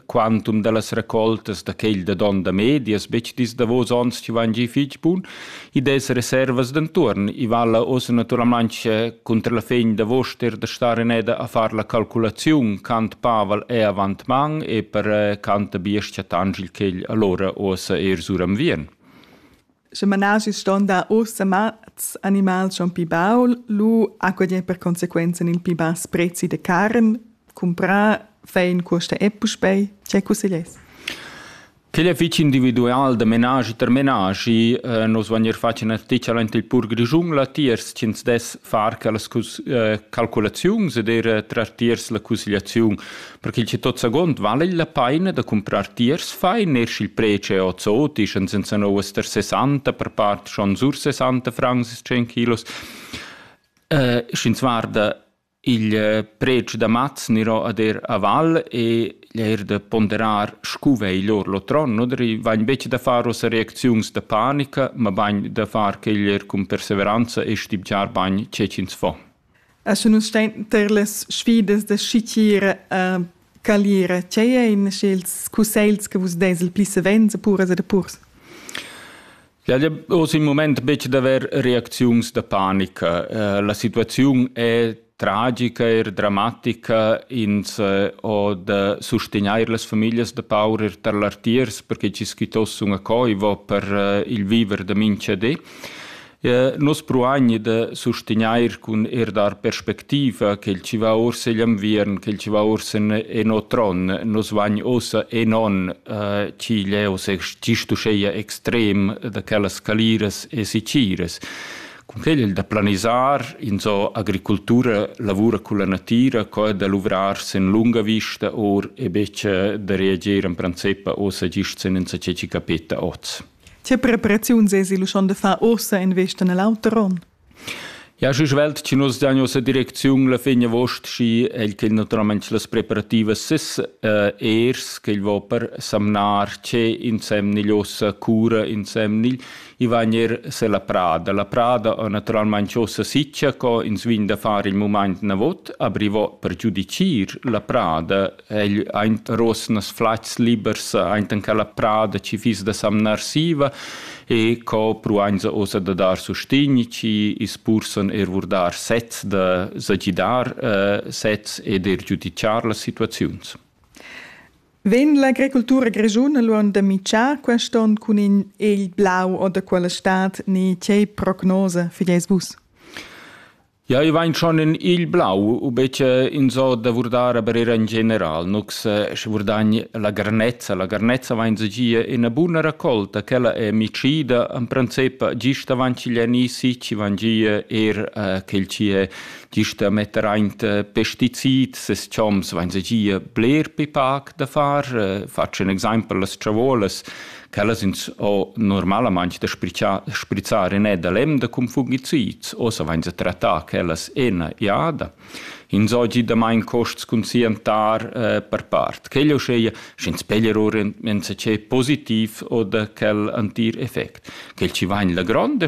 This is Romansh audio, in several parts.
quantum dallas raccoltas da quel da don da medias betg dis davos onns chi van gi fich bun i des reservas d'entuorn i vala ossa naturalmente contra la fin da voster da star in eda a far la calculaziun cant pavel è avant man e per cant biescha tangil quel allora ossa er suram vien Sche menaschi ston dar ussa mats animals schon pi baul, lu acquadien per consequenza il pi bass prezi de carn, cumprar, fai in cuosta e puspei, ce cusseglies? Quel è fitg individual da menaschi ter menaschi. Eh, nus vagnir fatg ina sticcia ent il pur grischun latiers ch'ins dess far quellas cus- eh, calculaziuns ed er eh, trar tiers la cusgliaziun. Perché che tot sagond vala la paina da comprar tiers fai ner sch'il preci è ozzotisch en senza novas ter 60 per part schon sur 60 francs 100 kilos. Uh, Sch'ins guarda il eh, preci da maz niro ad er a val e er de ponderar scu vei lor lotron, oder i vain becce da far ossa reacziuns da panica, ma bain da far quegl er cun perseveranza e stibgiar bain cecins fo. Esche nus stein ter las sfidas da schitgir e calir tgei ein ils cussegls che vus deis il pli savens a puras ed a purs? Ja, ja oz im moment betg d'avair reacziuns da panica. Eh, la situaziun è tragica, er dramatica. Ins eh, ho da sustegnair las famiglas da paurer tar l'artiers perché ci schitoss una coivo per eh, il viver da minchadé. Nus pruagni da sustegnair cun eir dar perspectiva ch'el chi va uossa igl inviern, ch'el chi va uossa en o tron. Nus vagn uossa enon ch'igl è uossa gist uscheia extrem da quellas caliras e siciras. Cun quel il da planisar, insò agricultura lavura culla natira, co da luvrar sen lunga vista or e betg da reagir in princip uossa gist sen insatge chi capeta oz. Tge preparaziun sesi lu schon de far ussa in vesta nel auter onn? Ja, și svelt ci nos da nossa direcziun la fin agost și el che naturalmente las preparativas sis uh, ers che il va per samnar ce insemnil ossa cura insemnil i vanir se la prada. La prada naturalmente ossa siccia co ins vin da fare il moment na vot, abrivo per giudicir la prada egl aint rosnas flats libers aint in quella prada chi fiss da samnar siva e co pruainza ossa da dar sustign chi ispursan eir vurdar sets da sagidar eh, sets ed eir giudichar las situaziuns. Vegn l'agricultura grischuna luond da mitschar quest on cun in egl blau o da quella stad ni tgei prognosa fideis vus? Ja, i vain schon in igl blau u bece insò da vurdar aber eir in general, nu che sche vurdagn la garnezza. La garnezza vain gia üna buna racolta, quella è micida, in princip gist avant ch'igl è ni sich, vain gia eir eh, quel chi è gist da metter aint eh, pestizid, ses choms vain gia bler pi pac da far. Eh, Faccio un exempel, las ciavolas quellas ins ho normalamaing da sprichar sprizzar in da lem da cum fungicids, ossa vains a trattar quellas ena jada. Ins ho giudamaing costs cun siantar eh, per part. Quel uscheia, sch'ins peglier or ins che positiv o da quel antir effect. Quel ci vain la gronda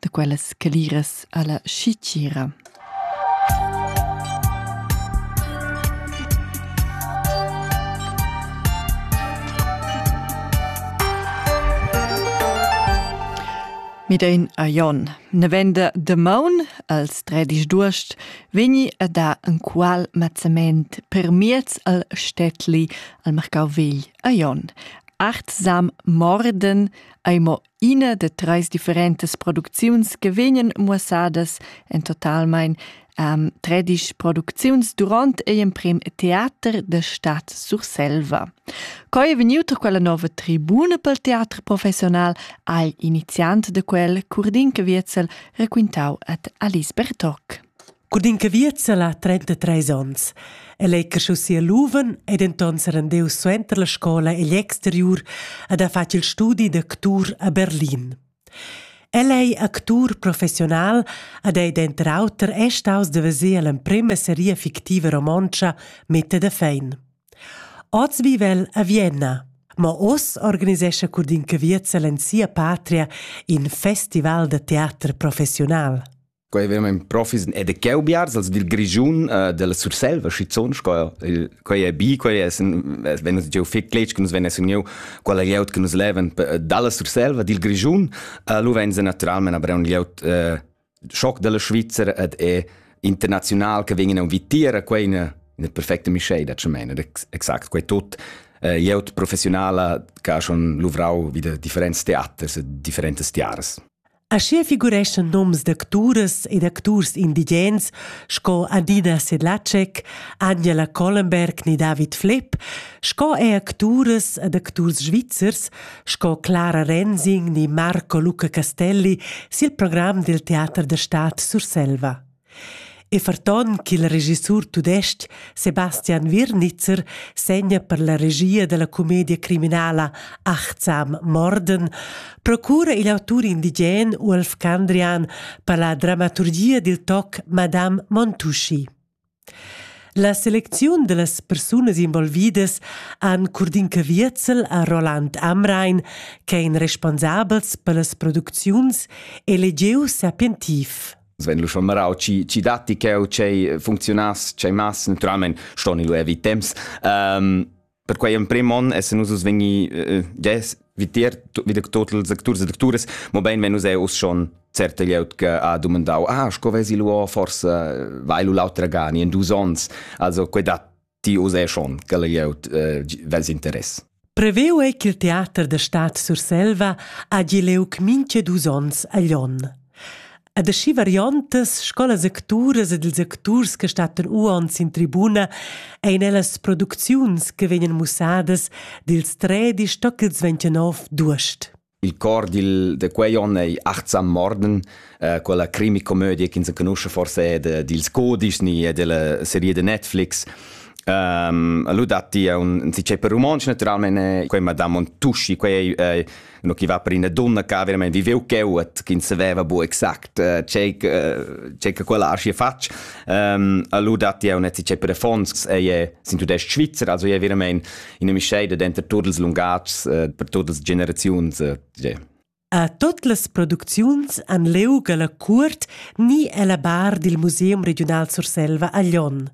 da quellas caliras alla schitgira. Midein a Jon. Nevenda de Maun, als tredisch d'uost, vegni a da en qual mazzament per miez al Städtli al Marcau vegl a Jon. Acht sam morden, eimo Ina da treis differentas producziuns che vegnan muossadas en totalmein ähm, tredisch producziuns durant ei emprem teater da Stadt Surselva. Coi è venuta quella nova tribuna pel teater professional al iniziant de quel Curdin Caviezel raquintau ad Alice Bertoc. Cun in caviezza la 33 onns. El ei cresciu sia luven e denton serendiu suenter la scola egl exteriur ed ha fatg il studi d'actur a Berlin. El ei actur professional ed ei denter auter è staus da veser l'emprema seria fictiva romontscha Mette da Fein. Oz vive el a Vienna, ma oz organisescha Curdin Caviezzel en sia patria in festival da teater professional. Quei veramein profis ed e cheu biars als dil Grischun uh, della Surselva schizzon sco quei è bi quei es wenn uns giu fig cletg che nus wenn es uniu quella glieud che nus leven dalla Surselva dil Grischun uh, lu wenn se naturalmente aber un glieud uh, schock della Schweizer ed è international che vegin a vitira quei in in perfecta mischei da chemena exakt quei tot uh, glieud professionala che ha schon luvrau wieder differents theaters e differentes tiaras Aschia figureschan noms d'acturas ed acturs indigens sco Adina Sedlacek, Angela Collenberg ni David Flepp, sco er acturas ed acturs svizzers sco Clara Rensing ni Marco Luca Castelli sil program dil teater da stad Surselva. E ferton ch'il regissur tudestg Sebastian Wirnitzer segna per la regia dalla comedia criminala Achtsam Morden, procura igl autur indigen Uolf Candrian per la dramaturgia dil toc Madame Montuschi. La selecziun dallas persunas involvidas han Curdinca Wierzel a Roland Amrain, che ein responsabels per las producziuns, e legiu sapientiv. Sven lu schon marau ci ci datti cheu chei funzionass chei mass naturalment ston lu evi temps um, per quei emprem on essen nus us vegni uh, ges vitier wieder total secturs e sectures mo bein wenn us è us schon certe glieud che ha domandau ah sco vesi lu forse vai lu l'autra gani in dus ons also quei dat ti uss schon che glieud eh, vels interess. Preveu ei ch'il teater da Stad Surselva hagi leuc minche dus ons a Lyon. Ad aschi variontas scolas acturas ed ils acturs che stattan uons in tribuna ein ellas producziuns che vegnan mussadas dils tredi stoc ils 29 d'uost. Il cor dil, de quei onn ei achtsam morden, äh, quella crimi-comödie che ins conosce forse de, dils Codisch ni e della serie de Netflix. Um, allora datti un, si c'è per romanzi naturalmente quei Madame Montusci, quei è äh, no chi va per una donna che veramente viveu cheuat, che non sapeva bu exact uh, c'è che quella arci faccia. Um, allora datti un, si c'è per Fons, è sin tudest Svizzera, also è veramente ina mischeida denter tuts ils lungatgs eh, per tuts las generaziuns. Eh, a tot las producziuns han leu la cuort ni ella bar dil Museum Regional Surselva a Lyon.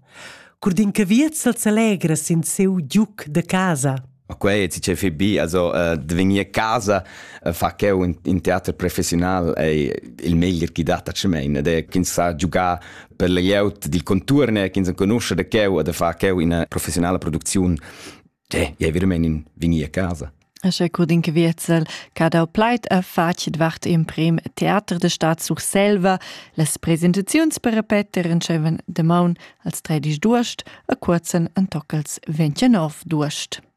Curdin Caviezel s'alegra sin seu giuc de casa. Ma quei ti ce fi bi, also uh, de vegnir casa uh, fa cheu in, in teater professional ei il meglier chi dat a Cemein, ed è ch'ins sa giugar per la glieud dil conturn ch'ins enconusce da cheu e da far cheu ina professionala producziun, eh, è veramente in vini a casa. Asche Codin Wietzel, cada pleit a facit vart im prim Theater de Staat Surselva, las presentaziuns per Peter entscheven de maun als 32 Durst a curzan an toccals 29 Durst.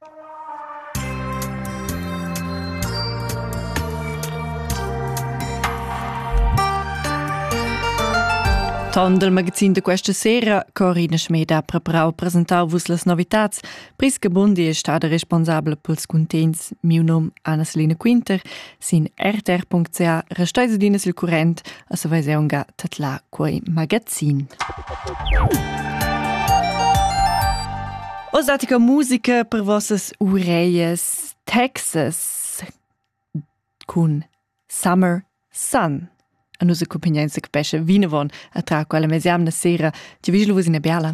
Ton del magazin de questa sera, Corina Schmed ha preparau presentar vus las novitats, pris che Bundi è stata responsabla pels cuntents. Miu num Anna-Selina Quinter Sin rtr.ca restais adina sil current a sa veseunga tatla quei magazin. Osatica musica per vossas ureies Texas cun Summer Sun. A nus accompagnain se capesce vinavon a tra quella mesiamna sera, ti vigil vus in biala.